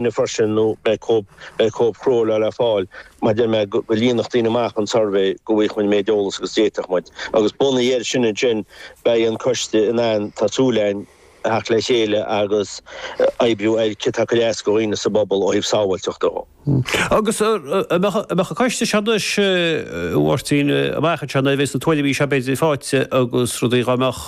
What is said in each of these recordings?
na Fuirseanna nó beidh cóip chrua le fáil mar deir mé go líonfadh daoine amach an suirbhé go bhfaigheadh muid an méid eolas agus a d'fhéadfadh muid agus bunaithe air sin ansin beidh an coiste in ann tá súil againn theacht le chéile agus oibriú ar céard atá ag cur as do dhaoine sa bpobal ó thaobh sábháilteachta dó. Agus an mbeadh an coiste seo anois, Mháirtín, amach anseo, bheadh na tuairimí seo b'fhéidir faighte agus rudaí dá mbeadh,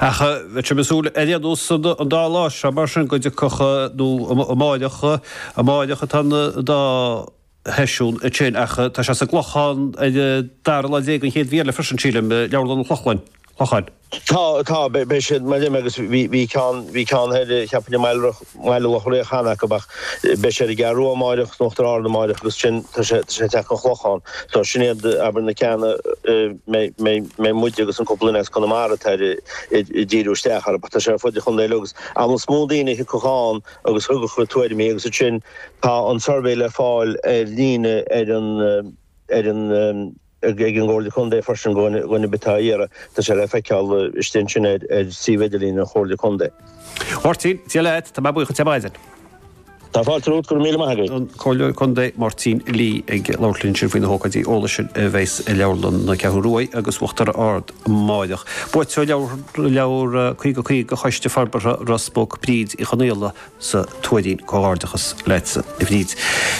Ach bheadh muid ag súil ar aon nós an dá lá seo mar sin go dtiocfadh nó amáireach, amáireach atá an dá sheisiún ansin ach tá sé sa gClochán ar dara lá déag an chéad mhí eile freisin sílim, Leabharlann an Chlochlainn, Chlocháin. Tá, tá, beidh siad mar sin agus bhí, bhí ceann, bhí ceann thoir cheapainn i mBaile Loch. Baile Locha Riach cheana acu ach beidh siad ar an gCeathrú Rua amáireach is in Uachtar Ard amáireach agus sin tá sé tá sé ag teacht an Chlochán so sin iad abair na ceanna mbeidh mbeidh mbeidh muide agus an cúpla duine as Conamara atá ar ag ag díriú isteach orthu but tá sé ar fud an chontae uilig agus amhlaidh is mó daoine a thiocfadh ann agus thabharfadh a dtuairimí agus ansin tá an suirbhé le fáil ar líne ar an ar an ag an gComhairle Contae freisin do dhuine ar bith atá á iarraidh. Tá sé le feiceáil istigh ansin ar suíomh idirlín an Chomhairle Contae. Máirtín, Ó Laoi, tá mé buíoch díot ar maidin. Tá fáilte romhat, go raibh míle maith agat. An Comhairleoir Contae, Máirtín Lee, ag labhairt linn ansin faoi na hócáidí eolais sin a bheas i Leabharlann na Ceathrún Rua agus Uachtar Ard amárach. Buaiteoir leabhar 50 50 Choiste Forbartha Ros Muc, Bríd Uí Chonaola, as An Tuairín comhghairdeachas leat a Bhríd.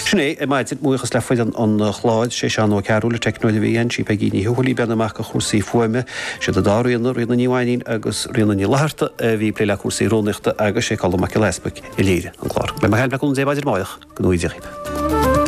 Sin é, a' maidin, buíochas le foireann an Chláir, sé Seán Ó Cearúil an teicneoir a bhí ann, sí Peigí Ní Thuathail, a bhí i mbun na gcúrsaí fuaime, siad an dá Ríona, Ríona Ní Mhainín agus Ríona Ní Fhlatharta a bhí ag plé le cúrsaí rúnaíochta agus sé Colm Mac Giolla Easbuic a léirigh an clár. Beidh mé ar ais libh le cúnamh Dé maidin amáireach ag a naoi, Déardaoin.